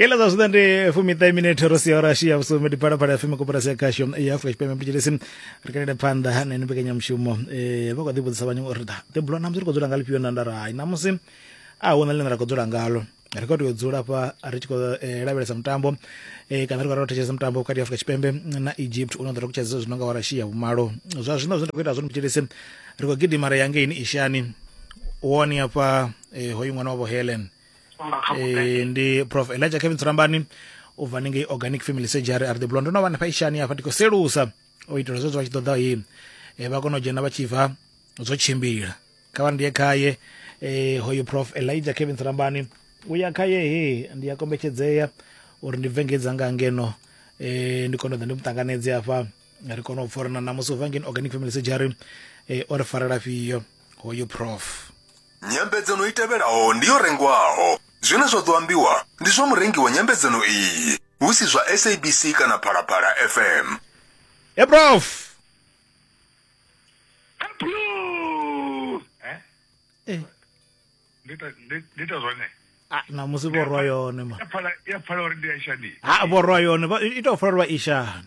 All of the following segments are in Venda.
kela zwa zwiḓa ndi fumiṱahe minete ro sia ora shia vhusumi ndi phalaphala ya feme koporasi ya khasho ya afrika tshipembe mtitshelesi ri kalele phanḓa na ino mbekanyamushumo um vha kho ḓi vhudzisa vhanyongo uri da ḓebulo namusi ri khou dzula nga lifhio na ndara hai namusi a hu na ḽine ra khou dzula ngalo ri khou tea u dzula fha ri tshi khou eh, lavhelesa mutambo eh, kana ri khou lavhelesa thetshelesa mutambo vhukati ha afrika tshipembe na egypt une ḓo ri kutshedza zwino nga warashia vhumalo zwa zwino zwine ra khou ita zwone mtitshelesi ri khou gidima ri ya ngeini ishani woni hafha eh, hoyu ṅwana wavho helen eh, ndi prof elijah kevin tsurambani u bva ningei organic family surgery ari ḓibulwa ndo no vha na faishani hafha ndi khou selusa o itela zwezwo vha tshi ṱoḓa i eh, vha kona u dzhena vha tshi bva zwo tshimbila kha vha ndiye khaye eh, hoyu prof elijah kevin tsurambani u ya khaye he ndi a kombetshedzea uri ndi bve ngedza nga ngeno eh, ndi kone u ḓa ndi mu ṱanganedze hafha ri kone u pfhorana namusi u bva ngeno organic family surgery eh, o ri farela fhio hoyu prof Nyambedzano i tevhelaho ndi yo rengwaho. Zwine zwa ḓo ambiwa ndi zwa murengi wa nyambedzano iyi, hu si zwa SABC kana Phalaphala FM. Hey prof. Eh, ndi ita zwone ah, na musi vhorwa yone ma ya pfala ya pfala uri ndi ya shani ha vhorwa yone vha- i tou fara lwa ishani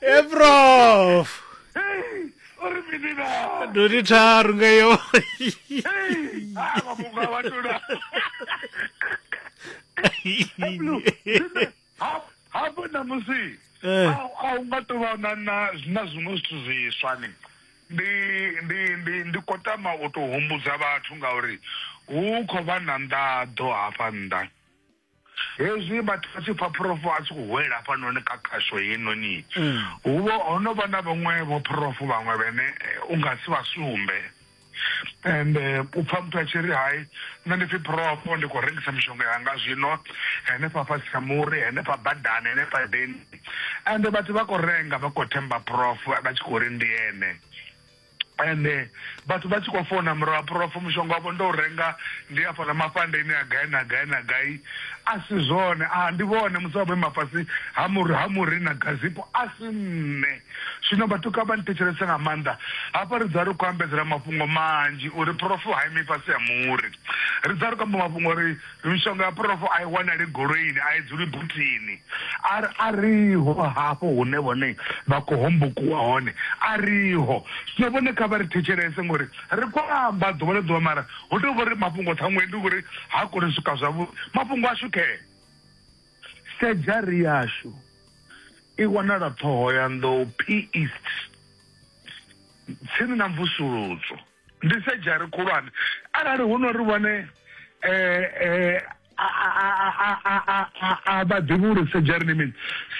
eprof Hey, uri mini na? ndoti tharu nga iyo Hey, ah, mafhungo a vhathu na. Blue, zwine- ha- hafho ṋamusi Eh. a- a u nga tou vha na na- na zwiṅwe zwithu zwiswa ni ndi ndi ndi ndi khou tama u tou humbudza vhathu ngauri hu khou vha na nḓaḓo hafha nnḓa Hezwi vhathu vha tshi pfa phurofo a tshi khou hwela hafhanoni kha khasho heinoni, hu vho ho no vha na vhaṅwe vhophurofo vhaṅwe vhene eh, u nga si vha sumbe and eh, u pfa muthu a tshi ri hai nṋe ndi pfi phurofo ndi khou rengisa mishonga yanga zwino henefha fhasi ha muri henefha badani henefha deni and vhathu vha khou renga vha khou themba phurofo vha tshi khou ri ndi ene ende vhathu vha tshi khou fona murahu ha phurofo mushonga wavho ndo u renga ndi a fhala mafhandeni a gai na gai na gai a si zwone a ndi vhone musi vha vho ima fhasi ha muri ha muri na gazipo a si nṋe zwino vhatuka vha nthetshelese nga maanḓa hafha ri dza ri khou ambedzela mafhungo manzhi uri phurofo ha imi fhasi ha muri ri dza ri khou amba mafhungo uri Mishonga ya phurofo a i wanali goloini, a i dzuli buthini. A, a riho hafho hune vhone vha khou hombokiwa hone. A riho. Zwino vhone kha vha ri thetshelese, ngori ri khou amba ḓuvha na ḓuvha, mara hu tou vha uri mafhungo ṱhaṅwe ndi uri ha koni u swika zwavhuḓi. Mafhungo ashu khe. Sedzhari yashu i wanala Ṱhohoyanḓou, PEast, tsini na Mvusuludzo. ndi sedzhari khulwane arali hu no ri vhone um a vha ḓivhi uri sedzhari ni mini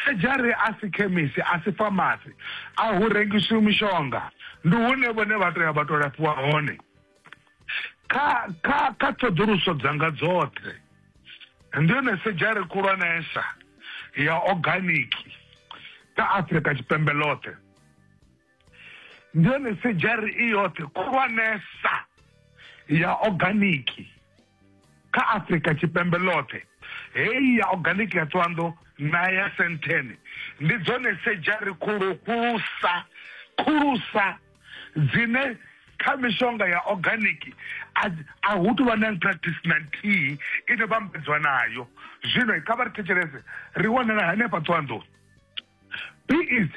sedzhari a si khemisi a si famasi a hu rengisiwi mishonga ndi hune vhone vha tou ya vha tou lafhiwa hone kha kha kha ṱhoḓuluso dzanga dzoṱhe ndi yone sedzhari khulwanesa ya organic kha afrika tshipembe ḽoṱhe ndi yone sedzhari i yoṱhe khulwanesa ya oganiki kha afurika tshipembe ḽoṱhe heyi ya oganiki ya ṱwanḓo na ya senthene ndi dzone sedzhari khulu khulusa khulusa dzine kha mishonga ya oganiki a hu tou vha na practice na nthihi ine vhambedziwa nayo zwino kha vha ri thetshelese ri wanala hanefha ṱwanḓoni Please,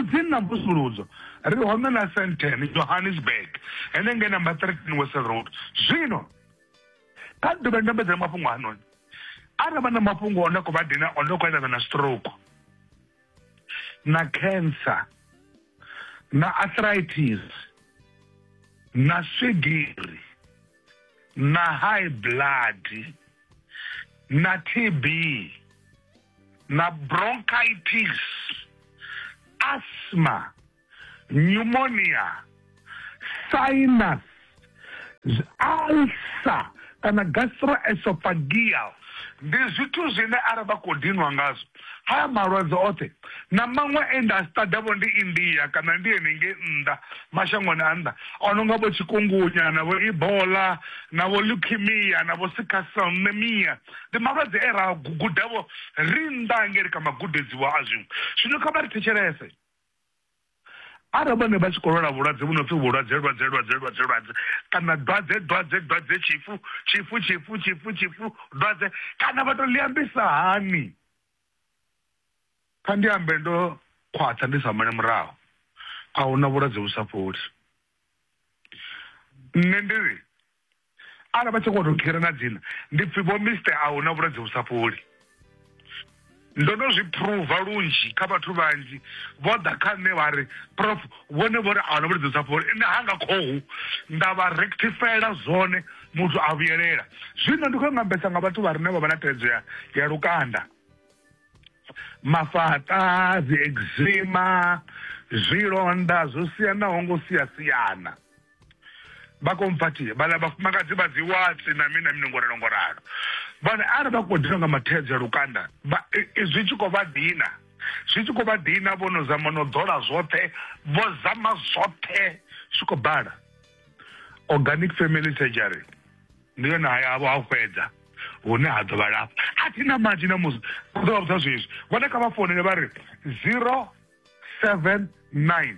dzi na mvusuludzo ri hone na senteni johannesburg henenge number 13 wesel road zwino kha ḓuvha ri ndambedzela mafhungo anoni arali vha na mafhungo one khou vha dina one khou eḓana na stroke na cancer na arthritis na swigiri na high blood na tb na bronchitis, asthma, pneumonia, sinus, ulcer kana gastroesophageal ndi zwithu zwine ara vha khou dinwa ngazwo haya malwadze oṱhe na maṅwe e nda a sitadavho ndi india kana ndi henengei nnḓa mashangoni a nnḓa o no nga vho tshikungunya na vho ebola na vho leukemia na vho sicklecellemia ndi malwadze e ra gu- gudavho ri nnḓa hangeli kha magudedziwa a zwiṅwe zwino kha vha ri thetshelese arali vhone vha tshi khou lwala vhulwadze vhu no pfi vhulwadze lwadze lwadze lwadze lwadze kana dwadze dwadze dwadze tshifu tshifu tshifu tshifu tshifu dwadze kana vha tou liambisa hani kha ndi ambe ndo khwaṱha ndi sa mane murahu a huna vhulwadze vhu sa fholi nṋe ndi ri Arali vha tshi khou tou kherana dzina ndi pfhi vho Mister a hu na vhulwadze vhu sa fholi. Ndo no zwi phuruva lunzhi kha vhathu vhanzhi vho ḓa kha nṋe vha ri prof vhone vho ri a hu na vhulwadze vhu sa fholi nṋe ha nga khohu nda vha rectifyela zwone muthu a vhuyelela. Zwino ndi khou nga ambesa nga vhathu vha re na vha vha na thaidzo ya ya lukanda, mafhaṱa, dzi eczema, zwilonda zwo siyanaho ngo sia siana. vha khou mphathia vhala vhafumakadzi vha dzi watsi na mini na mini ngoralo ngoralo vhone arali vha khou dina nga mathedza lukanda zwi tshi khou vha dina zwi tshi khou vha dina vho no zama no ḓola zwoṱhe vho zama zwoṱhe zwi khou bala organic family surgery ndi yone haya avho ha fhedza hune ha ḓo vha lafha a thi na manzhi na musi u ḓo vha vhudza zwezwi vhone kha vha founele vha ri zero seven nine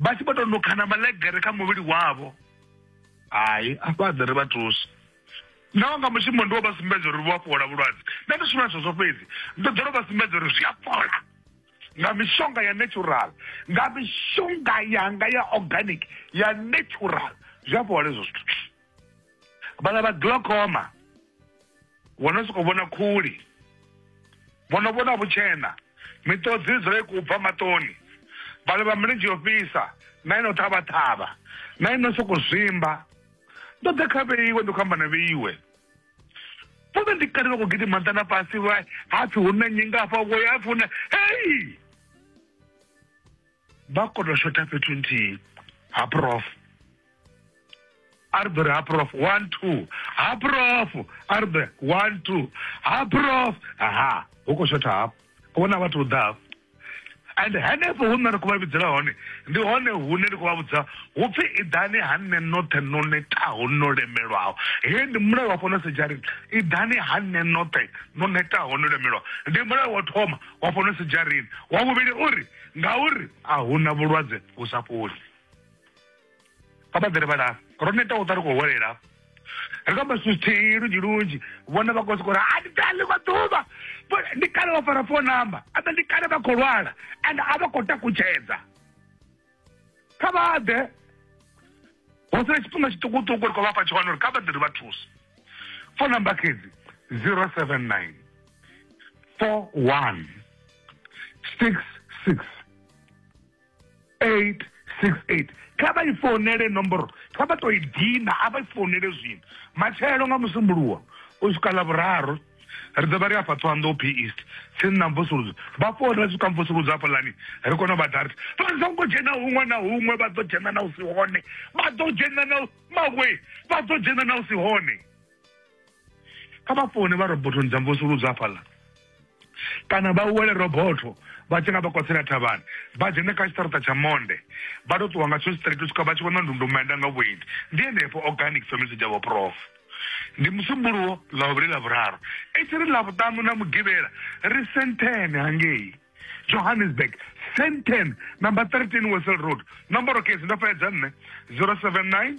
vha tshi vho tou nukhana malegere kha muvhili wavho hai afha ḓe ri vha thusi naho nga mushumo ndi wo vha sumbedza uri vho a fhola vhulwadze nṋe ndi shumela zwezwo fhedzi ndi ḓo ro vha sumbedza uri zwi a fhola nga mishonga ya natural nga mishonga yanga ya organic ya natural zwi a fhola hezwo zwithu vhaḽa vha glaucoma vho no sokou vhona khuli vho no vhona vhutshena miṱodzi i dzula i khou bva maṱoni vhaḽa vha milenzhe yo fhisa na ino ṱhavha ṱhavha na ino sokou zwimba ndo ḓa kha vheiwe ndi khou amba na vheiwe vhone ndi kale vha khou gidima nṱha na fhasi hapfi hu na nyingafha vhoya hapfi hu na hei vha kono shotha fhethu nthihi ha prof arbe ha prof one two ha prof arbe one two ha prof aha hu khou shotha hafho vhona vhathu u ḓa hafho and henefho hu nṋe ri khou vha vhidzela hone ndi hone hune ndi khou vha vhudza hu pfi iḓani ha nṋe noṱhe no netaho no lemelwaho he ndi mulayo wa fhano sejarini iḓani ha nṋe noṱhe no netaho no lemelwaho ndi mulayo wa thoma wa fhano sejarini wa vhuvhili uri Ngauri a hu na vhulwadze vhu sa fholi. Kha vha ḓele vha lafha. Ro neta u ṱwa ri khou holela. Ri kha masuthihi lunzhi lunzhi. Vhone vha khou sokou ri a ndi ḓa ḽiṅwe ḓuvha. Ndi kale vha fara phone number. A ḓa ndi kale vha khou lwala. Ende a vha khou takutshedza. Kha vha ḓe. Ho sala tshifhinga tshiṱukuṱuku ri khou vha fha tshone uri kha vha ḓe ri vha thuse. Phone number khedzi 079 four one six six eight six eight kha vha i founele nomboro kha vha to i dina a vha i founele zwino matshelo nga musumbuluwa u swika ḽa vhuraru ri ḓo vha ri afha thohoyanḓou p east tsini na mvusuludzo vha founela swika mvusuludzo hafho lani ri kone u vha dart vha songo dzhena huṅwe na huṅwe vha ḓo dzhena na u si hone vha ḓo dzhena na mawe vha ḓo dzhena na u si hone kha vha fone vha robothoni dza mvusuludzo hafhaḽa kana vha wele robotho vha tshi nga vha kwatsela thavhani vha dzhene kha tshiṱaraṱa tsha monde vha tou ṱuwa nga tsho straight u swika vha tshi vhona ndundumenda nga vhuendi ndi henefho organic family dzavho prof ndi musumbuluwo ḽa vhuvhili ḽa vhuraru i tshi ri ḽa vhuṱanu na mugivhela ri sentene hangei johannesburg senten number 13 wesel road nomboro case ndo fhedza nṋe 079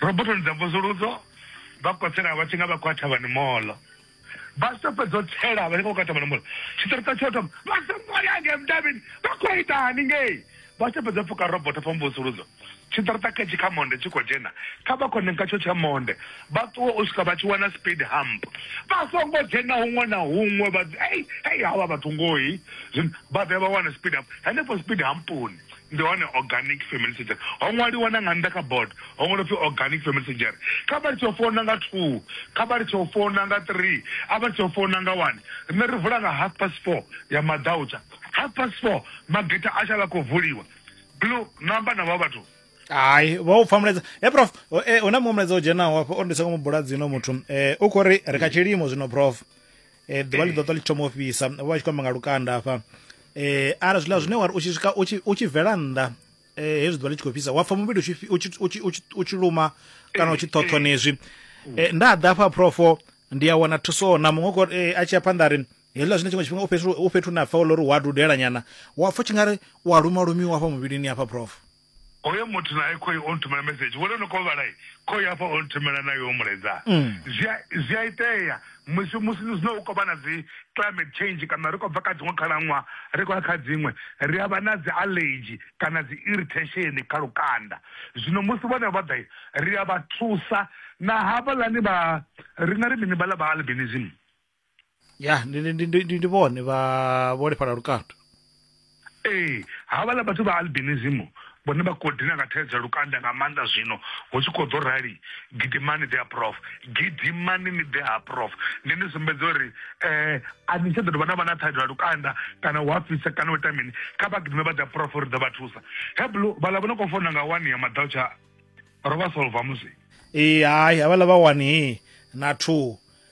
Robotoni dza mvusuludzo vha kotsela vha tshi nga vha khou ya thavhani molo vha tshi to fhedza u tsela vha tshi nga khou ya thavhani molo tshiṱirita tsho thoma vha songo ya ngei mudavhini vha khou ita hani ngei vha tshi to fhedza pfuka roboto fha mvusuludzo tshiṱirita khetshi kha monde tshi khou dzhena kha vha khone nga tsho tsha monde vha ṱuwe u swika vha tshi wana speed hump vha songo dzhena huṅwe na huṅwe vha ei ei havha vhathu ngohi zwino vha ḓe vha wane speed hump henefho speed hampuni ndi hone organic family surgery ho ṅwaliwa na nga nnḓa kha board ho ṅwaliwa pfi organic family surgery kha vha litshe u founa nga two kha vha litshe u founa nga three a vha litshe u founa nga one rine ri vula nga half past four ya madautsha half past four mageta a shala khou vuliwa blue namba na vha vhathu hayi vha u pfa mulaedza e prof o- eh, hu na muṅwe mulaedza o dzhenaho hafho o ndi songo mu bula dzino muthu um u khou ri ri kha tshilimo zwino prof eh, ḓuvha ḽi ḓo ṱwa ḽi thoma u fhisa vho vha tshi khou amba nga lukanda hafha eh ara zwiḽa zwine wari u tshi swika u tshi bvela nnḓa eh hezwi ḓuvha ḽi tshi khou fhisa wa pfha muvhili u tshi luma kana u tshi ṱhoṱhonezwi eh, nda ḓa hafha profo ndi a wana thuso na muṅwe kho eh, a tshi ya phanḓa ri hezwiḽa zwine tshiṅwe tshifhinga u fhethu u fhethu na pfha uri wa dudela nyana wa pfha tshi nga ri wa luma lumiwa hafha muvhilini hafha profo hoyo muthu naye khoyi o nthumela message vhone no kovhalai khoyi hafha o nthumela nayo mulaedza mm. zwi a itea musi musi zwino u khou vha na dzi climate change kana ri khou bva kha dziṅwe khalaṅwaha ri khou ya kha dziṅwe ri a vha na dzi allergy kana dzi irritation kha lukanda zwino musi vhone vha ḓa ri a vha thusa na havhaḽani vha ri na ri mini vhaḽa vha albinism ya ndi ndi ndi ndi ndi vhone vha vholefhala lukanda ee havhala vhathu vha albinism vhone vha khou dina nga thaidzo ya lukanda nga maanḓa zwino hu tshi khou ḓo rali gidimani ḓe ha prof gidimani ni ḓe ha prof ndi ni sumbedza uri um a ni tsha ḓo dovha na vha na thaidzo ya lukanda kana hu a fhisa kana u ita mini kha vha gidime vha ḓe ha prof ri ḓo vha thusa heblo vhala vho no khou fona nga wani ya maḓau tsha ro vha solva musi ee hai havhala vha wani na two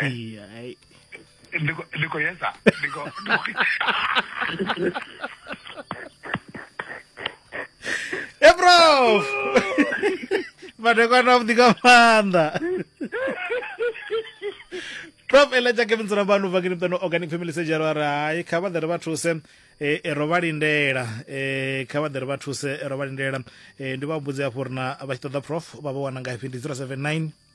Ai, ai. Ndiko ndiko yesa. Ndiko. e prof madekwana avhuḓi nga maanḓa prof ela tsha kevin dzula vhanu vha kini pano organic family surgery vha ri hai kha vha ḓe ri vha thuse eh, eh, ro vha lindela eh, kha vha ḓe ri vha thuse eh, ro vha lindela Eh, ndi vha vhudze hafho uri na vha tshi ṱoḓa prof vha vha wana ngafhi ndi 079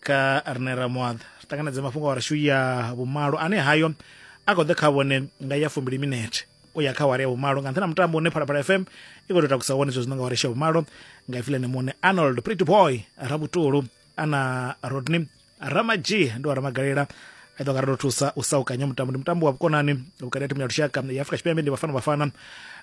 ka rine ramoaḓa ri ṱanganedze mafhungo a rashu ya vhumalo ane hayo a khou ḓe kha vhone nga ya fumbili minete u ya kha wari ya vhumalo nga nṱhani ha mutambo une phalaphala fm i khou tou takusa wone zwezwi nga wari ya vhumalo nga ifilene muṋe arnold pretty boy rabutulu ana rodney ramadzhie ndi wa ramagalela eḓo nga ri ḓo thusa u sa ukanya mutambo ndi mutambo wa vhukonani vhukati ha thimu ya lushaka ya afrika tshipembe ndi vhafana vhafana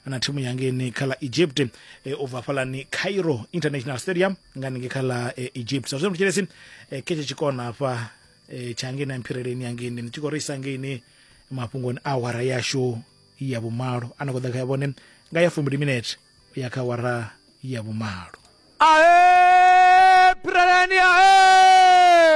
na thimu yangeni kha ḽa egypt e, u bva fhalani cairo international stadium nga ninge kha ḽa e, egypt sa zwino thetshelesi e, khe tshe tshikona hafha e, tsha ngeni ya mphireleni yangeni ndi tshi khou ri isa ngeini mafhungoni a awara yashu ya vhumalo a na khou ḓa kha ya vhone nga ya fumbili minete u ya kha awara ya vhumalo Aê, Pireleni, aê!